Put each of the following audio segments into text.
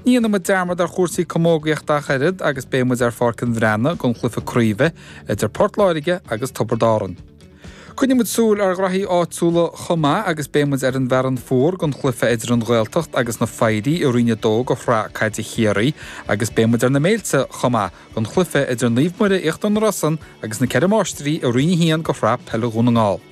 Ní dhéanfaidh muid dearmad ar chúrsaí camógaíochta ach oiread agus beidh muid ar Pháirc an Bhreathnaigh don chluiche craoibhe idir Port Láirge agus Tiobraid Árann. Coinneoidh muid súil ar ghnaithí áitiúla chomh maith agus beidh muid ar an bhFearann Fuar don chluiche idir an Ghaeltacht agus na Foidhrí i Roinn 2 de Shraith Caide Chiarraí agus beidh muid ar na Méilte chomh maith don chluiche idir Naomh Muire Íochtar na Rosann agus na Ceithre Máistrí i Roinn 1 de Shraith Peile Dhún na nGall.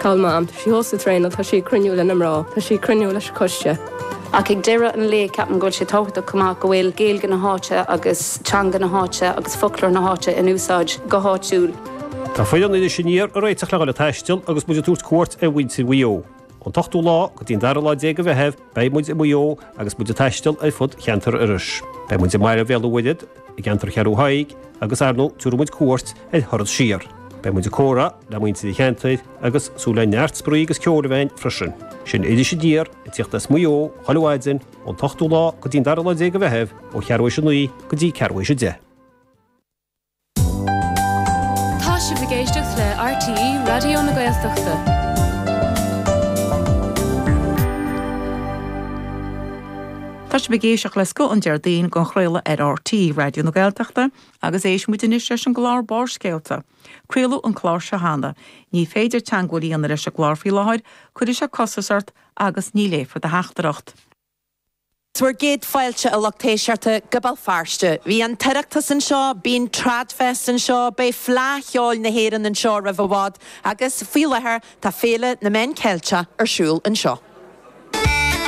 Cá bhfuil Mam, tá sí thuas ag traenáil, tá sí ag cruinniú leis na mná, tá sí ag cruinniú leis an coiste. Ach ag deireadh an lae ceapaim go bhfuil sé tábhachtach chomh maith go bhfuil Gaeilge na háite agus teanga na háite agus foclóir na háite in úsáid go háitiúil. Tá foireann Iris Aniar ag réiteach le dhul ag taisteal agus muid ag tabhairt cuairt ar mhuintir Mhaigh Eo. Ón t-ochtú lá go dtí an dara lá déag de Mheitheamh Beidh muid i Maigh Eo agus muid ag taisteal ar fud cheantar Iorrais. Beidh muid i mBaile Bhéal an Mhuirthead, i gceantar Cheathrú Thaidhg agus ar ndóigh tiúrfaidh muid cuairt ar Thuar Mhic Éadaigh siar. Beidh muid ag comhrá le muintir an cheantair agus súil le neart spraoi is comhrá againn freisin. Sin Iris Aniar ag teacht as Maigh Eo chuile mhaidin ón t-ochtú lá go dtí an dara lá déag de Mheitheamh ó cheathrú éis a naoi go dtí ceathrú éis a deich. Tá sibh ag éisteacht le RTÉ Raidió na Gaeltachta. Tá sibh ag éisteacht le scoth an Déardaoin dhá chraoladh ar RTÉ Raidió na Gaeltachta agus éistfidh muid anois leis an gclár Barrscéalta. Craoladh an clár seo cheana. Ní féidir teagmháil a dhéanamh leis an gclár faoi láthair, cuirfidh sé costas ort agus ní léifear do theachtaireacht. 'Sé bhur gcéad fáilte a lucht éisteachta go Béal Feirste. Bhí an tOireachtas anseo, bíonn TradFest anseo, beidh Fleadh Cheoil na hÉireann anseo roimh i bhfad agus faoi láthair tá Féile na Meán Ceilteach ar siúl anseo.